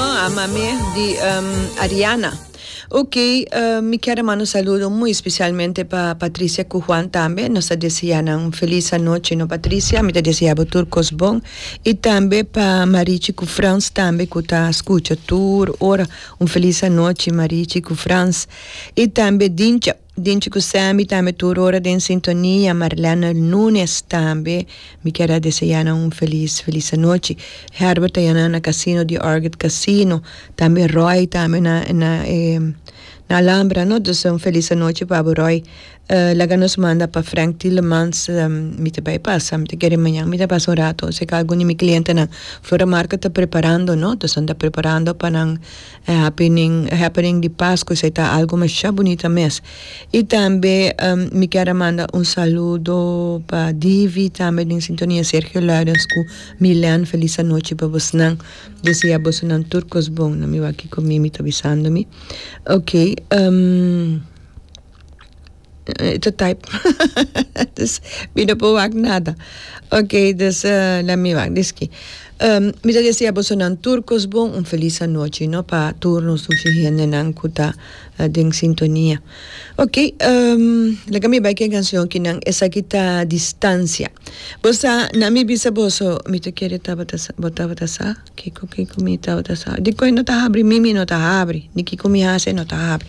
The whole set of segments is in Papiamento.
A mame di Ariana ok mi kier a manda un saludo muy special pa Patricia cu Juan tambe nos ta desea nan feliz anochi no Patricia mi ta desea bo tur cos bon y tambe pa Marichi cu Frans tambe cu ta scucha tur ora un feliz anochi Marichi cu Frans y tambe Dincha. Dinchi cu Sammy tambe tur ora den sintonia, Marlene Nunes tambe, mi kier a desea nan un feliz, feliz anochi. Herbert ta yana na casino di Orchid Casino, tambe Roy tambe na, na e, na Alhambra, no? Dus un feliz anochi pa bo Roy. Laga nos manda pa Frank Tilemans, mi ta bay pasa, mi ta kere mañan mi ta pasa un rato cerca algun di mi clientenan. Flor a Marco ta preparando, no? Dos nan ta preparando pa nan. E happening, e happening di Pascu esei ta algu masha bunita mes. I tambe mi kier a manda un saludo pa Divi tambe den sintonia Sergio Laurens ku Milen felis anochi pa bosnan. Desea bosonan tur kos bon na mi wak Kiko Mimi ta bisando mi. Okay. e ta type dus mi no por wak nada okay dus la mi wak di esquí um mi ta desea bosonan tur cos bon un feliz anochi no pa tur nos dushi hendenan cu ta den sintonia okay um laga mi bai cu e cancion ki nan esaki ta distancia bo sa nan mi bisa boso mi ta kere tabata sa bo tabata sa kico kico mi tabata sa dikon no ta habri mimi no ta habri di kico mi hasi no ta habri.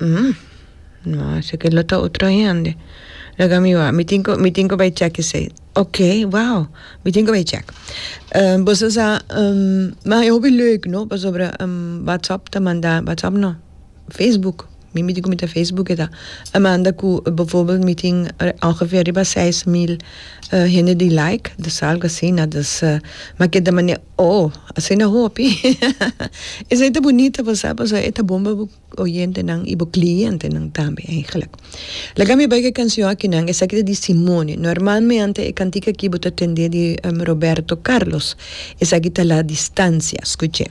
Hm, no, esaki lo ta otro hende. Laga mi wa, mi tin ku, mi tin ku bai chèk esei. Ok, wow, mi tin ku bai chèk. Uh, boso sa, um, ma e hopi leuk, no, pasobra, um, WhatsApp ta manda, WhatsApp no, Facebook, mi mi tin ku mi ta Facebook e ta, a manda ku, befòrbèl mi tin ongefeer riba seis mil, uh, hende di like, dus algu asina, dus, uh, ma ke ta mane Oh, asina hopi. Esei ta bunita pasá pasobra e ta bon pa bo oyentenan i bo klientenan tambe eigenlijk. Laga mi bai ku e kanshon aki nan, esaki ta di Simone. Normalmente e kantik aki bo ta tendé di Roberto Carlos. Esaki ta La Distancia. Skuch'é.